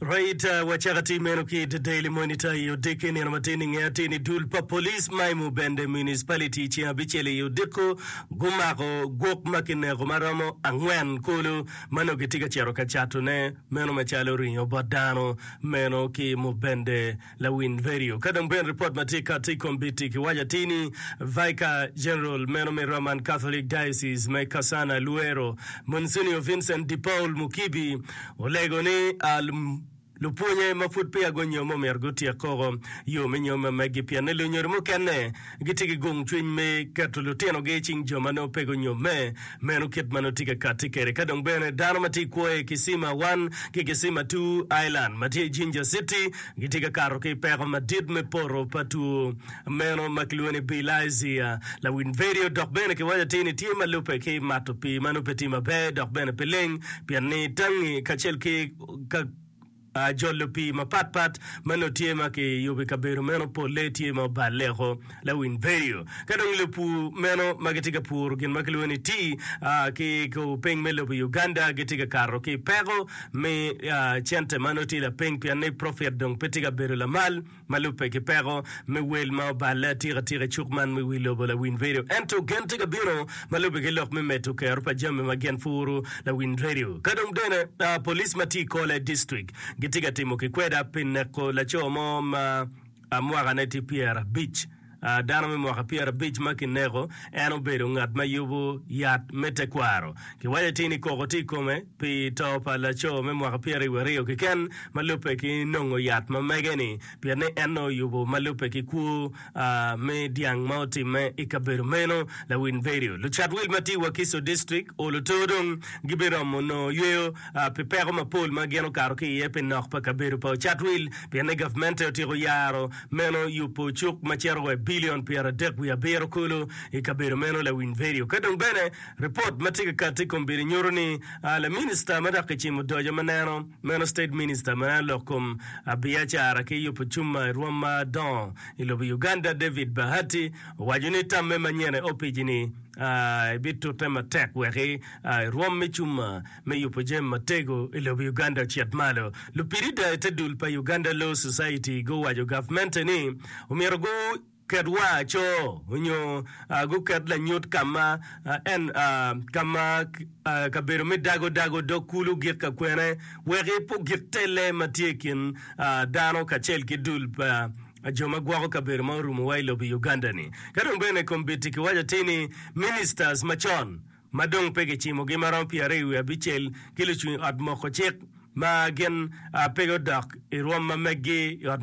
Reiter wacaka ti meno ki i The Daily Monitor i odiki nino ma tin i nge ateni dul pa police ma i Mubende Municipality i ceng abicel i odiko gumako gwok ma kineko ma romo angwen kulu ma nongo gitye ka cito ka catone meno macalo ringo bot dano meno ki Mubende Lawiny Radio. Ka dong bene ripot ma tye kati i kombiti kiwaco atir ni Vicar General meno me Roman Catholic Diocese me Kasana Luero, Monsignor Vincent De Paul Mukibi olego ni lupwonye ma pud peya gunyomo myero gutyek koko yo me nyomme megi pien ni lunyodo mukene gitye ki gomcwiny me keto lutinogi i cing jo ma nongo pe gunyomme. Meno kit ma nongo tye ka katti kwede. Ka dong bene dano ma tye i kwo i Kisima One ki Kisima Two Island ma tye i Jinja Citi gitye ka kato ki i peko madit me poto pa two meno ma kilwongo ni Bilharzia, lawiny vedio dok bene kiwaco atir ni tye ma lubbe ki mato pii ma nongo pe tye maber dok bene pe leng pien ni tangi kacel ki ka Jolo pii mapat pat ma nongo tye ma kiyubo i kabedo meno polle tye ma obaleko, lawiny vedio, ka dong lupur meno ma gitye ka puro gin ma kilwongo ni tea ki i kor piny me lobo Uganda gitye ka kato ki i peko me cente ma nongo tye lapiny pienni profit dong pe tye ka bedo lamal. Ma lubbe ki peko me wel ma oballe atikatika i cuk man me Wi Lobo Lawiny Radio ento gen tye ka bino ma lubbe ki lok me medo kero pa jami ma gin puro Lawiny Radio. Ka dong bene police ma tye i Kole District gitye ka timo kikweda pi neko laco mo ma mwakane tye pyerabic. dano me mwaka pyerabic ma kineko, en obedo ngat ma yubo yat me tekwaro. Kiwaco atir ni koko tye i kome pi to pa laco me mwaka pyeriwaryo keken ma lubbe ki nongo yat ma mege-ni, pien ni en nongo oyubo ma lubbe ki kwo me dyang ma otimme i kabedo meno. Lawil Berio, Lucat wil ma tye i Wakiso District olo to dong gibiromo nongo yweyo pi peko mapol ma gin okato ki iye pi nok pa kabedo pa ocat wil pien ni gavmente otyeko yaro Meno yubo cuk ma cito wa i bilion pyeradek wiye abiro kulu i kabedo meno. Lawiny Vedio. Ka dong bene, ripot ma tye ka kati i kom bedo nyuto ni laminista ma dok kicimo odoco ma neno meno State Minister me lok kom abiacara ki yubo cuma i rwom ma dongo i lobo Uganda David Bahati owaco ni tamme manyene opiji ni ebitute matek wek i rwom me cuma me yubo jami matego i lobo Uganda ocit malo. Lupirida i te dul pa Uganda Law Society guwaco gavmente ni omyero gu ket wa aco onyo gu ket lanyut kama en kama kabedo me dago dago dog kulu gik ka kwene wek i po gik telle ma tye i kin dano kacel ki dul pa jo ma gwoko kabedo ma orumo wa i lobo Uganda ni. Kadong bene kombiti kiwaco ti ni ministers macon ma dong pe gicimogi ma romo pyeraryo wiye abicel, ki lucung i ot moko cik ma gin pe gudok i rwom ma megi i ot moko.